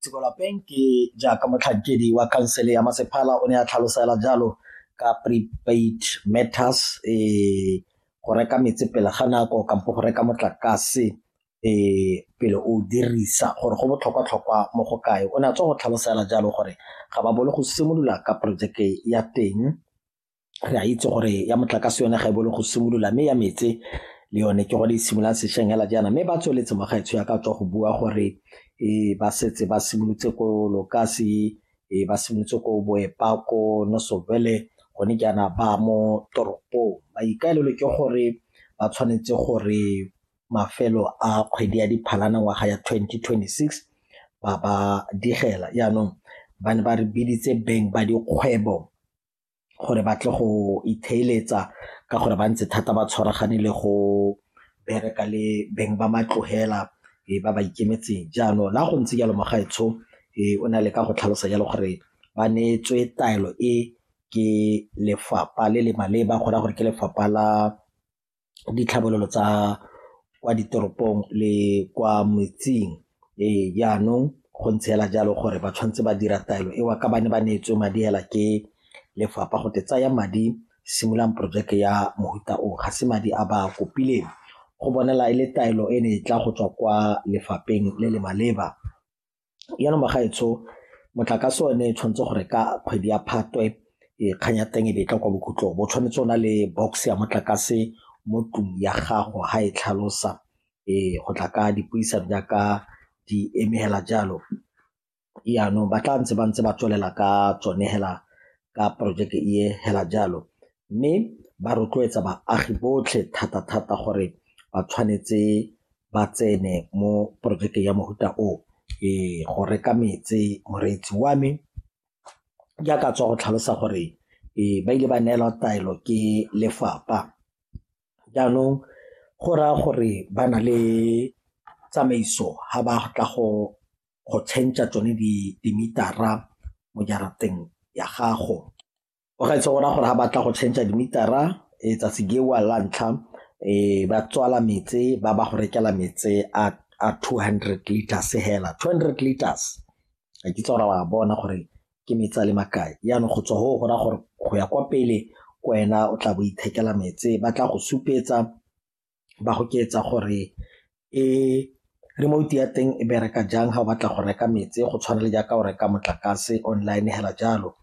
Tsiko Lapeng ke jaaka motlhankedi wa khansele ya masepala o ne a tlhalosela jalo ka prepaid matters um go reka metsi pele ga nako kampo go reka motlakase um pele o dirisa gore go botlhokwa-tlhokwa mo go kae o ne a tswa go tlhalosela jalo gore ga ba bolo go simolola ka projeke ya teng re a itse gore ya motlakase yone ga e bole go simolola mme ya metse le yone ke gone e simololang sešweng hela jaana mme ba tsweletse mogaetsho ya ka tswa go bua gore um ba setse ba simolotse ko lokasi um ba simolotse ko boepa ko nosovele gone jaana ba mo toropong maikaelelo ke gore ba tshwanetse gore mafelo a kgwedi ya diphalana ngwaga ya 2026 ba ba digela jaanong ba ne ba re biditse beng ba dikgwebo gore ba tle go itheeletsa ka gore ba ntse thata ba tshwaragane le go bereka le beng ba matlogela e ba ba ikemetseng jaanong la go ntse jalo mogaetsho e o na le ka go tlhalosa jalo gore ba neetswe taelo e ke lefapha le le maleba go raya gore ke lefapha la ditlhabololo tsa kwa ditoropong le kwa metseng ee jaanong go ntse fela jalo gore ba tshwanetse ba dira taelo eo ka ba ne ba neetswe madi fela ke lefapha go te tsaya madi simulang porojeke ya mofuta o ga se madi a ba kopileng go bonala e le taelo e ne e tla go tswa kwa lefapheng le le maleba. jaanong bagaetsho motlakase one e tshwanetse gore ka kgwedi ya phatwe e, kgang ya teng e be e tla kwa bokhutlong bo tshwanetse o na le box ya motlakase mo tlung ya gago ga e tlhalosa um go tla ka dipuisano jaaka di emegela jalo jaanong ba tla ntse ba ntse ba tswelela ka tsone hela ka porojeke e fela jalo mme ba rotloetsa baagi botlhe thata-thata gore ba tshwanetse ba tsene mo porojeke ya mofuta o ee go reka metse moreetsi wa me ke a ka tswa go tlhalosa gore ee ba ile ba neelwa taelo ke lefapha jaanong go raya gore ba na le tsamaiso ga ba tla go go change-a tsone dimitara mo jarateng ya gago. O ga itse gona gore ga batla go change-a dimitara tsatsi gewa la ntlha ba tswala metse ba ba go rekela metse a two hundred litres hela, two hundred litres ga ke itse gore wa bona gore ke metsi a le makae jaanong go tswa go go raya gore go ya kwa pele kwena o tla bo ithekela metse ba tla go supetsa ba go ketsa gore e remote ya teng e bereka jang ga o batla go reka metsi go tshwana le jaaka o reka motlakase online hela jalo.